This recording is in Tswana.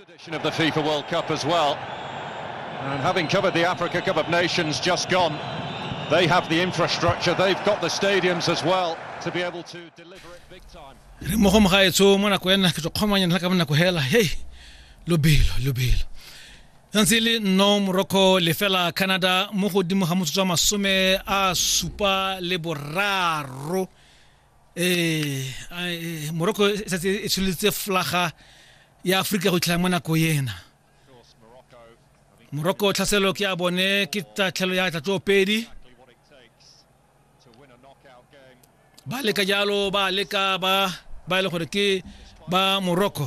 Tradition of the FIFA World Cup as well. And having covered the Africa Cup of Nations just gone, they have the infrastructure, they've got the stadiums as well to be able to deliver it big time. re mo go mogaetso mo nako ena ke tlo kgomanya nna ka mo nako hela hei lobelo lobelo santse e le nno morocco lefela canada mo godimo ga motsotso wa masome a supa le boraro ee eh, morocco e setse e tsholetse flaga ya aforika go itlhela mo nako ena morocco tlhaselo ke a bone ke tatlhelo ya tlatlo pedi ba leka jalo ba leka ba ba e le gore ke ba morocco